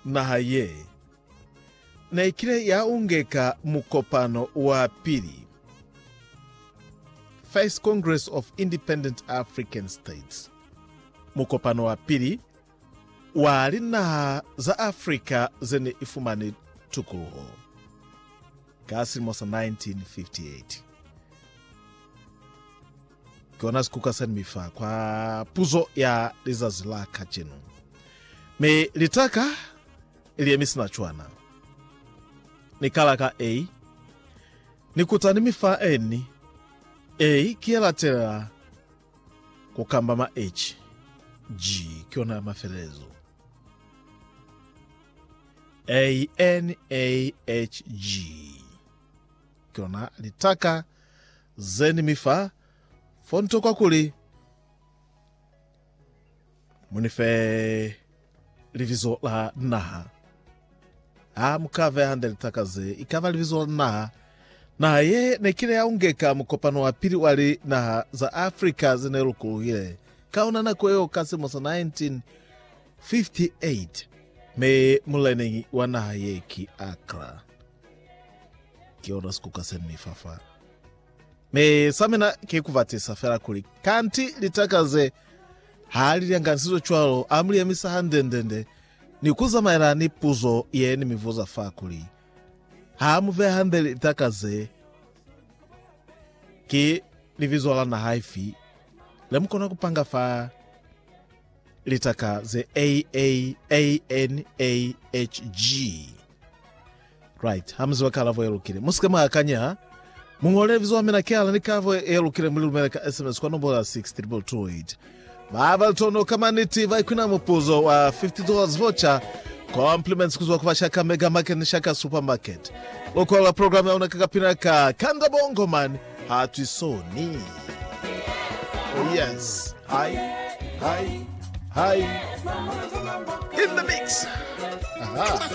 Naha ye ne i kile ya ungeka mukopano wa pili, First Congress of Independent African States, mukopano wa pili wa linaha za Afrika ze ne i fumani tukuluho, ka silimo sa 1958. Ki ona sikuka sani mi fa kwa puzo ya lizazi la kacenu. Mi litaka ili ye mi sina cwana. Ni kala ka A. Ni kuta ni mi fa N. A ki ye latelela ku kamba ma H. G ki ona ya mafelelezo. A N A H G ki ona litaka zeni mi fa fo ntokwa kuli mu ni fe libizo la naha. Ha mu ka beya hande litaka ze i ka ba libizo la naha. Naha ye ne kile ya ungeka mukopano wa pili wa linaha za Africa ze ne lukuluhile ka ona nako yeo ka silimo sa 1958, mi muleneñi wa naha ye ki Accra. Ki ona sikuka se ni fa fa. Mi sa mina ki ku batisa fela kuli, kanti litaka ze ha li lyanganisizo cwalo, a mu li yemisa hande-ndende ni ku zamaela ni puzo ye ni mi vuza fa kuli, Ha mu beha hande litaka ze, ki libizo la naha ifi le mu kona ku panga fa litaka ze A, A, A, N, A, H, G? Right. Ha mu ziba kalabo ye lukile, mu si ke mwa akanya. Mu ñole libizo la mina, kihala ni kalabo ye lukile, mu li lumele ka SMS kwa nombola ya 62228. Ba ba litono ka maniti ba ikwina mupuzo wa $50 voucher compliments ku zwa ku ba Shaka Mega Market ni Shaka Supermarket. Lukwalo la programe ya luna ka kapina ka Kanda Bongo Man ha twi soni. Oh yes. Hi, hi, hi. In the mix. Aha.